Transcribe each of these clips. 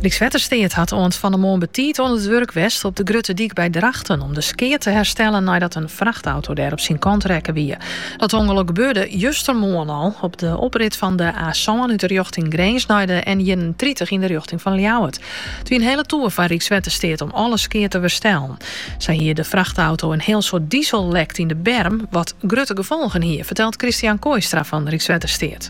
Rykswettersteat hat oant fan 'e moarn betiid oan it wurk west op de Grutte Dyk by Drachten om de skea te herstellen neidat in frachtauto dêr op syn kant rekke wie. Dat ûngelok gebeurde justermoarn al op de oprit fan de A-sân út de rjochting Grins nei de N31 yn de rjochting fan Ljouwert. It wie in hiele toer foar Rykswettersteat om alle skea te werstellen. Sa hie de frachtauto in hiel soad diesel lekt yn de berm, wat grutte gefolgen hie, fertelt Christian Kooistra fan Rykswettersteat.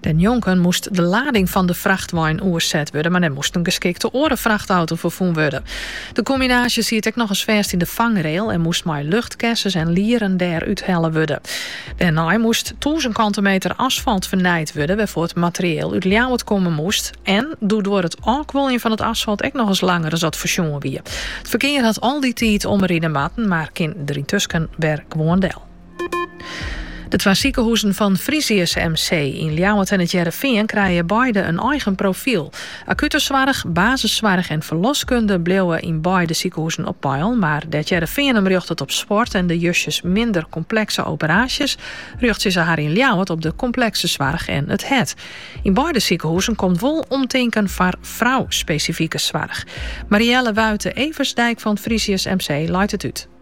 Dêrnjonken moast de lading fan de frachtwein oerset wurde, mar dêr moast in geskikte oare frachtauto foar fûn wurde. De kombinaasje siet ek nochris fêst yn de fangrail en moast mei luchtkessens en lieren dêr úthelle wurde. Dêrnei moast tûzen kante meter asfalt fernijd wurde, wêrfoar it materieel út Ljouwert komme moast en doe duorre it ôfkuoljen fan it asfalt ek nochris langer as dat foarsjoen wie. It ferkear hat al dy tiid omride moatten, mar kin der yntusken wer gewoan del. De twa sikehuzen fan Frisius MC yn Ljouwert en it Hearrenfean krije beide in eigen profiel. Akute soarch, basissoarch en ferloskunde bliuwe yn beide sikehuzen op peil, mar dêr't Hearrenfean him rjochtet op sport en de justjes minder komplekse operaasjes, rjochtsje se har yn Ljouwert op de komplekse soarch en it hert. Yn beide sikehuzen komt wol omtinken foar frou-spesifike soarch. Mariëlle Wuite-Eversdijk fan Frisius MC leit it út.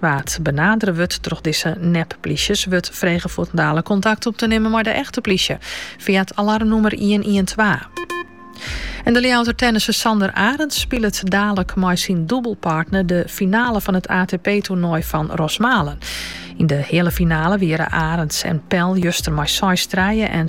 Wa't benadere wurdt troch dizze nep-plysjes, wurdt frege fuortendaliks kontakt op te nimmen mei de echte plysje fia it alarmnûmer ien-ien-twa. En de Ljouwerter tennisser Sander Arends spilet dalik mei syn dûbelpartner de finale fan it ATP-toernoai fan Rosmalen. Yn de heale finale wieren Arends en Pel juster mei seis en